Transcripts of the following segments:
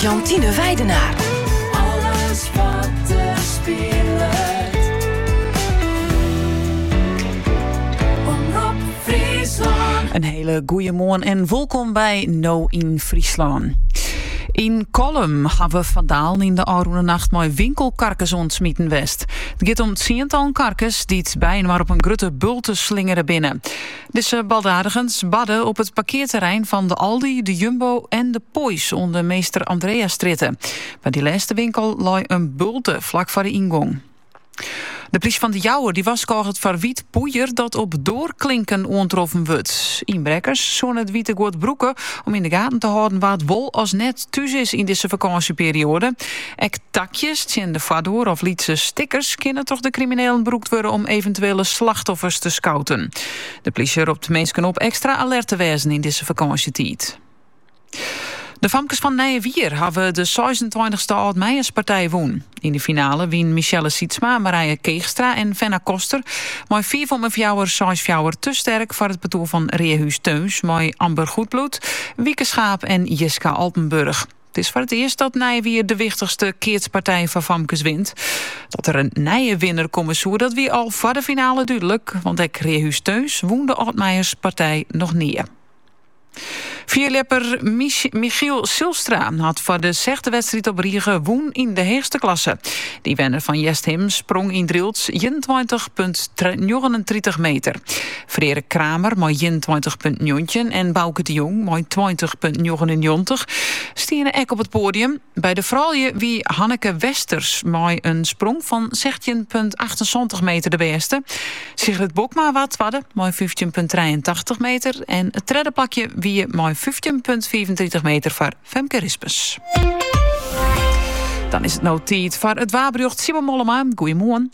Jantine Weidenaar. Alles wat er speelt. Omroep Friesland. Een hele goede morgen en welkom bij No yn Fryslân. Yn Kollum hawwe fandalen yn de ôfrûne nacht mei winkelkarkes oan it smiten west. It giet om tsientallen karkes dy't byinoar op in grutte bulte slingere binne. Dizze baldadigens barde op it parkearterrein fan de Aldi, de Jumbo en de Poiesz oan de Meester Andreaestrjitte. By dy lêste winkel lei in bulte flak foar de yngong. De plysje fan De Jouwer die warskôget foar wyt poeier dat op doarklinken oantroffen wurdt. Ynbrekkers soene it wite guod brûke om yn de gaten te hâlden wa't wol as net thús is yn dizze fakânsjeperioade. Ek takjes tsjin de foardoer of lytse stickers kinne troch de kriminelen brûkt wurde om eventuele slachtoffers te scouten. De plysje ropt minsken op ekstra alert te wêzen yn dizze fakânsjetiid. De famkes fan Nijewier hawwe de 26e Ald-Meierspartij wûn. Yn de finale wien Michelle Sijtsma, Marije Keegstra en Fenna Koster mei fiif om 'e fjouwer, seis fjouwer te sterk foar it partoer fan Reahûs-Turns mei Amber Goedbloed, Wieke Schaap en Jiska Altenburg. It is foar it earst dat Nijewier de wichtichste keatspartij foar famkes wint. Dat der in nije winner komme soe, dat wie al foar de finale dúdlik, want ek Reahûs-Turns wûn de Ald-Meierspartij noch nea. Fierljepper Michiel Zijlstra hat foar de sechde wedstrijd op rige wûn yn de heechste klasse. De ynwenner fan Eastrum sprong yn Drylts 21,39 meter. Freark Kramer mei ienentweintich punt njoggentjin en Bauke de Jong mei tweintich punt njoggenennjoggentich stiene ek op it poadium. By de froulju wie Hanneke Westert mei in sprong fan sechstjin punt achtensantich meter de bêste. Sigrid Bokma waard twadde mei fyftjin punt trijeentachtich meter en it tredde plakje wie mei fyftjin punt fiifentritich meter foar Femke Rispens. Dan is it no tiid foar it waarberjocht. Simon Mollema, goeiemoarn.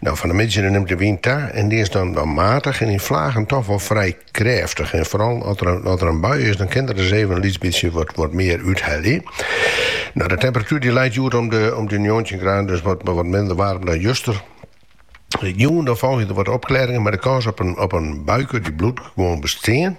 No, fan 'e middei, sjoch, dan nimt de wyn ta en dy is dan matich en yn flagen toch wol frij krêftich. En foaral as der, as der in bui is, dan kin der ris even in lyts bytsje wat, wat mear úthelje. No, de temperatuer dy leit hjoed om de, om de njoggentjin graden, dus wat, wat minder waarm dan juster. Te jûn, dan folgje der wat opklêringen, mar de kâns op in, op in buike, dy bliuwt gewoan bestean.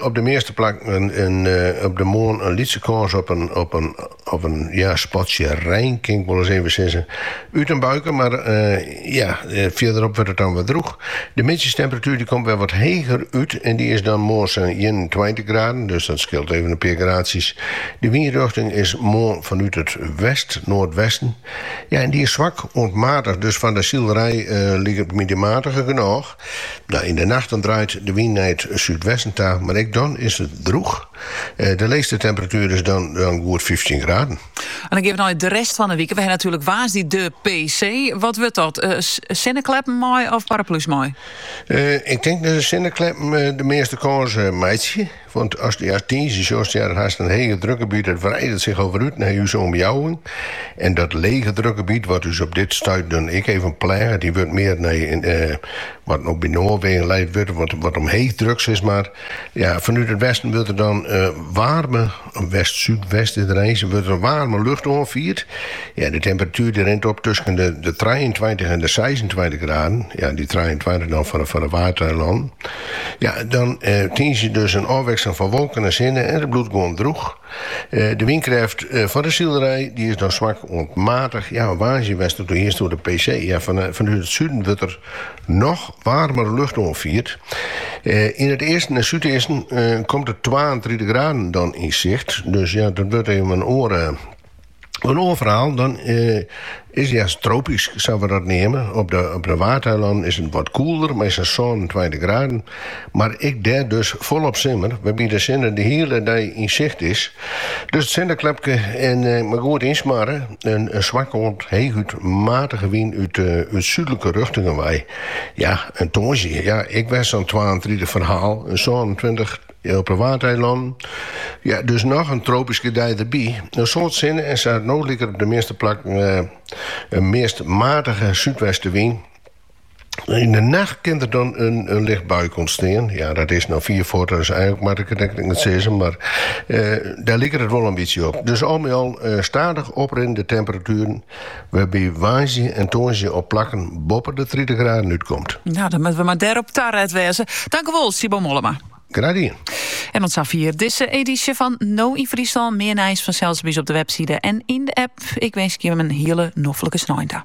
Op de measte plakken op de moarn in lytse kâns op in spatsje rein, kin 'k wol ris even sizze. Ut in buike wei, mar fierderop wurdt it dan wer drûch. De middeistemperatuer komt wer wat heger út en dy is dan moarn sa'n ienentweintich graden, dus dat skilt even in pear graadjes. De wynrjochting is moarn fanút it west, noardwesten. Dy is swak oant matich, dus foar de sielerij liket my dy matige genôch. Yn de nacht dan draait de wyn nei it súdwesten ta, mar ek dan is it drûch. De leechste temperatuer is dan dan goed fyftjin graden. En dan gean we nei de rest fan de wike. We ha natuerlik woansdei de PC. Wat wurdt dat? Eh, sinnekleppen mei of paraplu's mei? Eh, ik tink dat de sinnekleppen eh, de measte kâns meitsje. Want ast tiisdei sjochst, ja, der hast in hege drukgebiet dat wreidet sich wer út nei ús omjouwing en dat lege drukgebiet wat ús op dit stuit dan ek even pleaget, ja, wurdt mear wat no by Noarwegen leit wurdt, wat omheech drukt, sis mar. Ja, fanút it westen wurdt der dan waarme, west-súdwest is de wyn, wurdt der waarme lucht oanfierd. Ja, de temperatuer dy rint op tusken de trijeentweintich en de seisentweintich graden, ja dy trijeentweintich dan foar de Waadeilannen. Ja, dan eh, tiisdei dus in ôfwekseling fan wolken en sinne en it bliuwt gewoan drûch. Eh, de wynkrêft eh, fan de silerij dy is dan zwak oant matig. Ja, woansdei, hiest it earst oer de PC. Ja, van, eh, fanút it suden wurdt der noch waarmere lucht oanfierd. Eh, yn it easten en súdeasten eh, komt de 32 graden dan yn sicht. Dus ja, dat wurdt even in oar In oar ferhaal dan eh, is ja tropysk, sa't we dat neame. Op de, op de Waadeilannen is it wat koelder, mei sa'n 27 graden. Mar ek dêr dus folop simmer, wêrby't de sinne de hiele dei yn sicht is. Dus it sinneklepke en eh, mar goed ynsmarre. In, in swakke oant heechút matige wyn út, eh, út súdlike rjochtingen wei. Ja, en tongersdei, ja, ek wer sa'n 32 ferhaal, in 27 Op de Waadeilannen. Ja, dus noch in tropyske dei derby. In soad sinne en sa't it no liket op de measte plakken in meast matige súdwestewyn. Yn de nacht kin der dan in, in licht buike ûntstean. Ja, dat is no fier fuort, dat is einlik min te sizzen mar eh, dêr liket it wol in bytsje op. Dus al mei al uh, eh, stadig oprinnende temperatueren. Wêrby't it woansdei en tongersdei op plakken boppe de tritich graden útkomt. Nou, dan moatte we mar dêrop taret wêze. Tankewol, Sibo Mollema. Graach dien. En oant sa fier dizze edysje fan No yn Fryslân. Mear nijs fansels by ús op de webside en yn de app. Ik winskje jimme in hiele noflike snein ta.